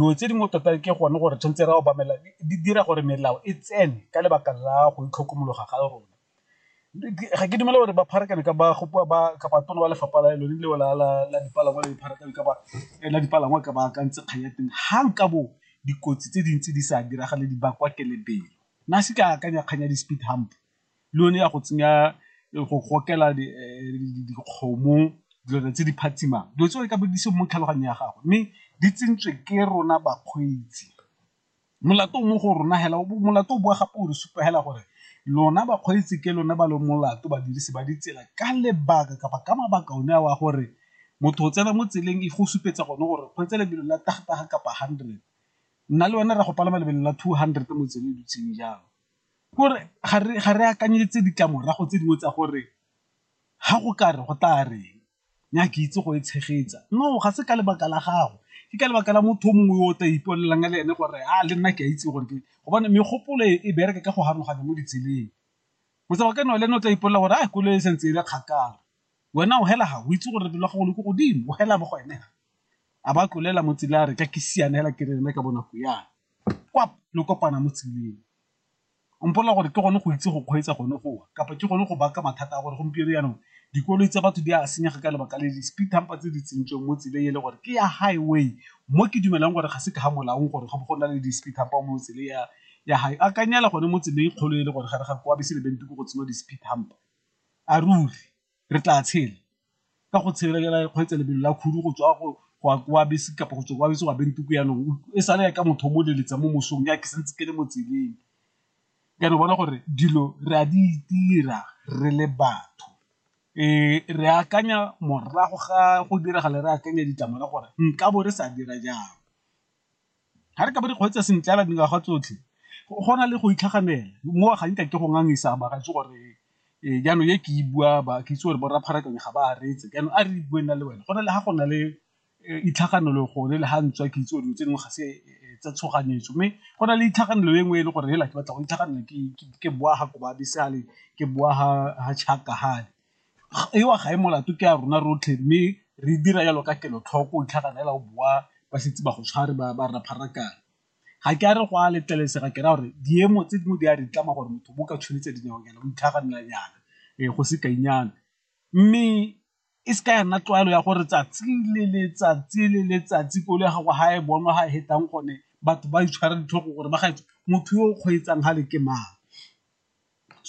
Dilo tse dingwe tota ke gone gore tshwanetse re obamela di dira gore melao e tsene ka lebaka la go itlhokomologa ga rona. Ga ke dumele gore ba pharakano ka ba gopiwa ba kapa tona ba lefapha la lone leo la dipalangwa le dipharakano ka ba la dipalangwa ka ba akantse kgang ya teng ga nka bo dikotsi tse dintsi di sa diragale di bakwa ke lebelo. Nna se ke akanya kgang ya di-speed hump. le yone ya go tsenya go gokela dikgomo dilwana tse di phatsimang dilo tse di ka bodise mo tlhaloganyong ya gago mme di tsentswe ke rona bakgweetsi molato mo go rona hela molato o boa gape o re supa hela gore lona bakgweetsi ke lona ba le molato badirisi ba ditsela ka lebaka kapa ka mabaka one a wa gore motho o tsena mo tseleng e go supetsa gone gore kgweetsa lebelo la tagtaga kapa hundred nna le wena re go palama lebelo la two hundred mo tseleng dutseng jalo. Gore ga re akanyetse ditlamorago tse dingwe tsa gore ga go ka re go tla reng nya ke itse go e tshegetsa, no ga se ka lebaka la gago ke ka lebaka la motho o mongwe o tla ipolelang le ene gore a le nna ke a itse gore ke gobane megopolo e bereke ka go haroganya mo ditseleng. Motshameko wa ka le ene o tla ipolelang gore a koloi e santse e le kgakala Wena o hela ga o itse gore lebelo ga go le ko godimo, o hela mo go ene. A ba tlolela mo tseleng a re ka ke siana hela ke re ene ka bonako yana. Kwap, le kopana mo tseleng. O mpolelela gore ke gone go itse go kgweetsa gone go wa, kapa ke gone go baka mathata a gore gompieno yanong dikoloi tsa batho di a senyega ka lebaka le di-speed humper tse di tsentsweng mo tseleng e le gore ke ya highway. Mo ke dumelang gore ga se ka ga molaong gore go bo go na le di-speed humper mo tseleng ya ya akanyela gone mo tseleng e kgolo e le gore gare ga kwa bese le bente ko go tsenngwa di-speed humper. A ruri re tla tshela? Ka go tshelela kgweetsa lebelo la khudu go tswa go wa kwa bese kapa go tswa kwa bese wa beng tuku yanong e sale ya ka motho o mo leletsa mo mosong ya ke santse ke le mo tseleng, ka re bona gore dilo re a di itira re le batho re akanya morago ga go diragala re akanya ditlamorago gore nka bo re sa dira jang. Ga re ka ba re kgweetsa sentle fela dingwaga tsotlhe go na le go itlhaganela mo ga nka ke go ngangisa mara itse gore ee jaanong e ke e bua ba ke itse gore bo rapharakanye ga ba aretse jaanong a re bue nna le wena go na le ga go na le itlhaganelo gone le ga ntswa ke itse gore dilo tse dingwe ga se tsa tshoganyetso mme go na le itlhaganelo e nngwe e le gore hela ke batla go itlhaganelo ke boa ga kobabisale ke boa ga chaka gale ewa ga e molato ke a rona rotlhe mme re dira jalo ka kelotlhoko ntlha kana ela o boa ba setse ba go tshware ba ba rra pharakana ga ke a re go a letlelesega ke ra gore diemo tse dingwe di a re tlama gore motho bo ka tshwanetse dinao nyana o itlhaganela nyana e go se kainyana mme e se ka ya nna tlwaelo ya gore tsatsi le letsatsi le letsatsi kolo ya gago ga e bonwa ga e hetang gone batho ba itshwara ditlhogo gore ba gaetsho motho yo o kgweetsang ga le ke mang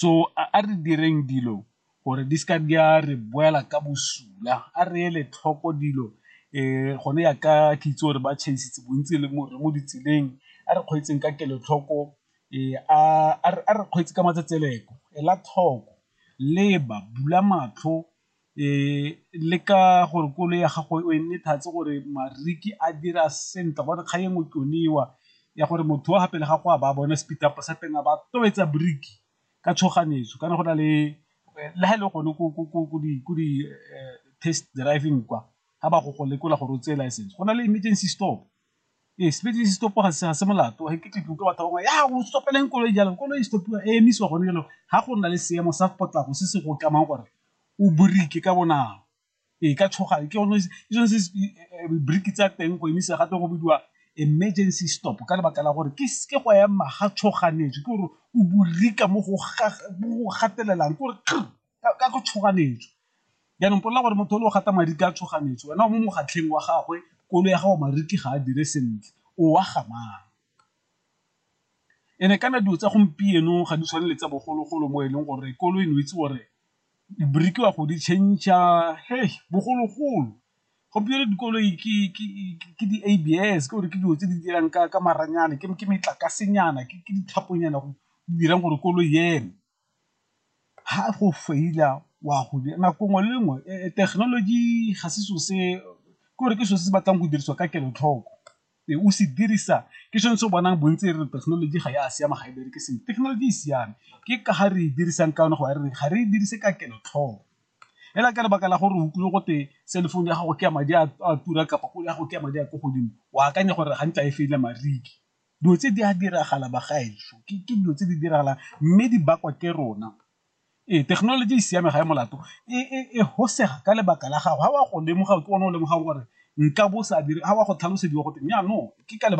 So a re direng dilo gore di seka di a re boela ka bosula, a re ele tlhoko dilo gone ya ka ke itse gore ba tšhaisitse bontsi le mo mo ditseleng, a re kgweetseng ka kelotlhoko a re kgweetse ka matsetseleko, ela tlhoko, leba, bula matlho. le ka gore koloi ya gago e nne thats gore mariki a dira sentle gobane kgang e nngwe ke yone eo ya gore motho wa fa pele ga go a ba a bone speed up sa teng a ba tobetsa brake ka tshoganyetso kana go na le le ga e le gone ko di test driving kwa ga ba go go lekola gore o tseye license go na le emergency stop. Ee, sepedi se stop-a ga se ga se molato ga ke tle ke utlwe batho ba bangwe ya o stopeleng koloi jalo koloi e stop-iwa e emisiwa gone jalo ga go nna le seemo sa potlako se se go tlamang gore o borike ka bonako ee ka tshoga ke gone ke sone se briki tsa teng go emisa gape go bidiwa emergency stop ka lebaka la gore ke ke go ema ga tshoganetswe ke gore o borika mo go gatelelang ke gore . ka go tshoganetswa jaanong polela gore motho o le o gata madi ka tshoganetswa wena o mo mogatlheng wa gagwe kolo ya gago mariki ga a dire sentle o wa gamang ene kana dilo tsa gompieno ga di tshwane le tsa bogologolo mo e leng gore kolo e ne itse gore birikiwa go di change-a he bogologolo gompieno dikoloi ke di-abs ke gore ke dilo tse di dirang ka maranyane ke metlakasenyana ke dithaponyana go dirang gore koloi eme. ga go feila wa go dira nako nngwe le nngwe thekenoloji ga se selo se ke gore ke selo se se batlang go dirisiwa ka kelotlhoko e o se dirisa ke sone se o bonang bontsi e re thekenoloji ga e a siama ga e bereke sentle thekenoloji e siame ke ka ga re e dirisang ka yone go ya re ga re e dirise ka kelotlhoko fela ka lebaka la gore o utlwile go twe cell phone ya gago ke ya madi a tura kapa ya gago ke ya madi a ko godimo o akanya gore ga ntla e feile mariki. dilo tse di a diragala bagaetsho ke dilo tse di diragalang mme di bakwa ke rona ee thekenoloji e siame ga e molato e hosega ka lebaka la gago ga wa go lemoga ke one o lemogang gore nka bo sa dire ga wa go tlhalosediwa go teng jaanong ke ka lebaka